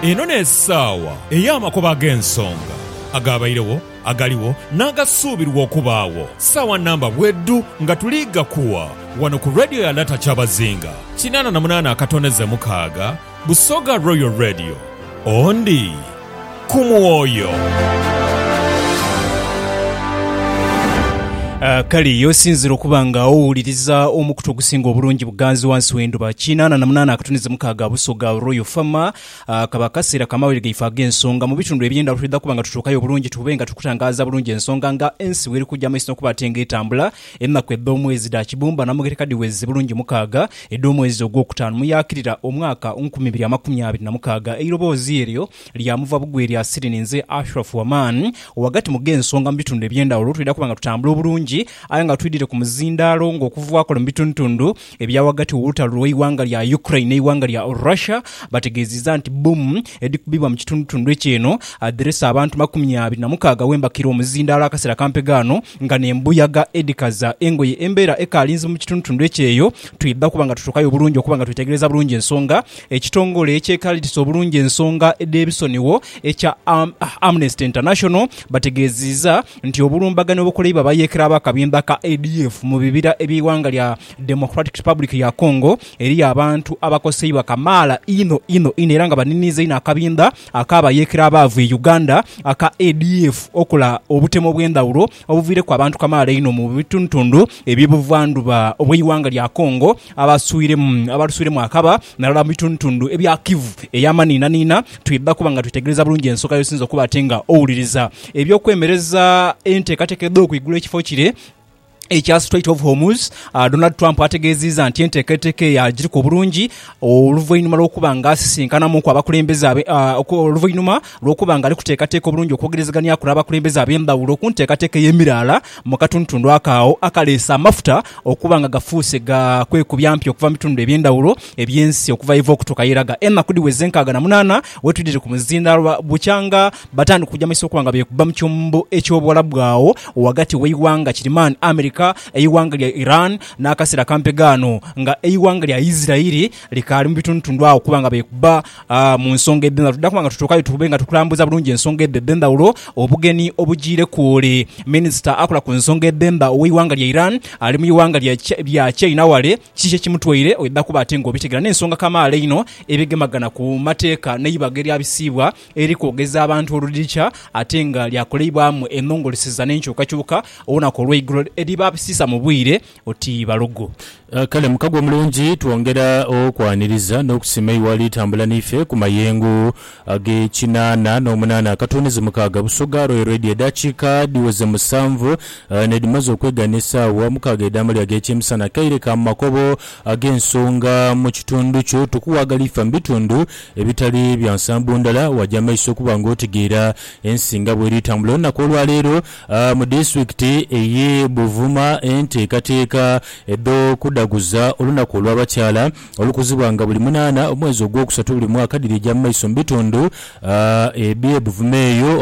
Eno n'esaawa ey'amakubo ag'ensonga, agaabairegho, agaligho, n'agasuubirwa okubaagho. Saawa namba bwedhu nga tuli ghakuwa ghano ku Radio ya Lata Kyabazinga kinaana na munaana akatondeze mukaaga, Busoga Royal Radio. Ondi. ku mwoyo. Kale ye osinzire okuba nga owuliriza omukutu ogusinga obulungi buganzi wansi w'endhuba. Kinaana na munaana akatuni zimukaaga Busoga Royal Farm. Kaba akaseera ka mawulire gaife ag'ensonga. Mu bitundu eby'endhaghulo twidha kuba nga tutuukayo bulungi tube nga tuli kutangaaza bulungi ensonga nga ensi bw'eri kuja mu maiso n'okuba ate ng'etambula. Enaku edh'omwezi dha kibumba namugereka dhiweze bulungi mukaaga, edh'omwezi ogwokutaanu muyaakirira omwaka nkumi ibiri amakumi abiri na mukaaga. Eiroboozi eryo lyamuva bugwi lya Siri ninze Ashraf Waman. Ghagati mu gh'ensonga mu bitundu eby'endhawulo twidha kuba nga tutambula obulungi aye nga twidhire ku muzindaalo ng'okuva kule mu bitundutundu ebya ghagati w'olutalo lw'eighanga lya Ukraine n'eighanga lya Russia bategeeziza nti bbomu edhikubibwa mu kitundutundu ekyo eno adhireese abantu makumi abiri na mukaaga wembakira omuzindaalo akaseera kampegho ano Nga n'embuyaga edhikaza engoye embeera ekaali nzibu mu kitundutundu ekyeyo, twidha kuba nga tutuukayo obulungi okuba nga twetegereza bulungi ensonga. Ekitongole ekyekaliritisa obulungi ensonga dh'ebisonigho ekya Amnesty International bategeeziiza nti obulumbaganyi obukoleibwa abayeekera b'akabinda ka ADF mu bibira eby'eighanga lya Democratic Republic ya Congo eriyo abantu abakoseibwa kamaala inho inho inho era nga baniniiza inho akabinda Ak'abayeekera abaavu e Uganda aka ADF okola obutemo obw'endhawulo obuviireku abantu kamaala einho mu bitundutundu eby'e buvandhuba obw'eighanga lya Congo abaluswiremu akaba nalala mu bitundutundu ebya Kivu ey'amaniinaniina. Twidha kuba nga twetegereza bulungi ensonga y'osinze okuba ate nga owuliriza eby'okwemereza enteekateeka edh'okwigula ekifo kire. ekya Strait of Hormuz, Donald Trump ategeeziiza nti enteekateeka eyo agiriku obulungi oluvainhuma lw'okuba nga asisinkanamuuku abakulembeze oluvainhuma lw'okuba nga ali kuteekateeka obulungi okwogerezaganiaku n'abakulembeze ab'endhawulo ku nteekateeka ey'emiraala mu katundutundu ako agho akaleese amafuta okuba nga gafuuse ga kwekubya mpi okuva mu bitundu eby'endhawulo eby'ensi okuva yeva okutuuka yeraga. Enaku dhiweze nkaaga na munaana wetwidhire ku muzindaalo bukyanga Batandika okujamisa okuba nga beekubba mu kyombo eky'Obuwalabu agho ghagati w'eighanga kirimaani America, eighanga lya Iran n'akaseera kampe ghano nga eighanga lya Isiraeli likaali mu bitundutundu agho okuba nga beekubba mu nsonga edh'endhaghulo. Twidha kuba nga tutuukayo tube nga tukulambuza bulungi ensonga edho edh'endhaghulo. Obugeni obujiireku ole minisita akola ku nsonga edh'emba ow'eighanga lya Iran ali mu ighanga lya China wale. Kiki kye kimutwaire? Oidha kuba ate ng'obitegera n'ensonga kamaala einho edhigemagana ku mateeka n'eibaga eryabisiibwa eri kwogeza abantu oludhikya ate nga lyakoleibwamu enhongoleseza n'enkyukakyuka olunaku olweigulo eriba abisiisa mu bwire oti balugu. Kale mukago omulungi twongera okwaniriza n'okusiima iwe alitambula n'ife ku mayengo ag'ekinaana n'omunaana akatuunizi mukaaga Busoga Royal Radio edaakiika dhiweze musanvu n'edhimaze okwegana esaawa mukaaga edh'amalya ag'ekyemisana. Kaire ka mu makobo ag'ensonga mu kitundu kyo. Tukuwaagala ife mu bitundu Ebitali bya nsambo ndala, waja maiso okuba nga otegeera ensi nga bweri tambula olunaku olwaleero mu disitulikiti eye Buvuma. Enteekateeka edho kudaguza olunaku olwa bakyala olukuzibwa nga buli munaana omwezi ogwokusatu buli mwaka dhirija mu maiso mu bitundu ebye Buvuma eyo.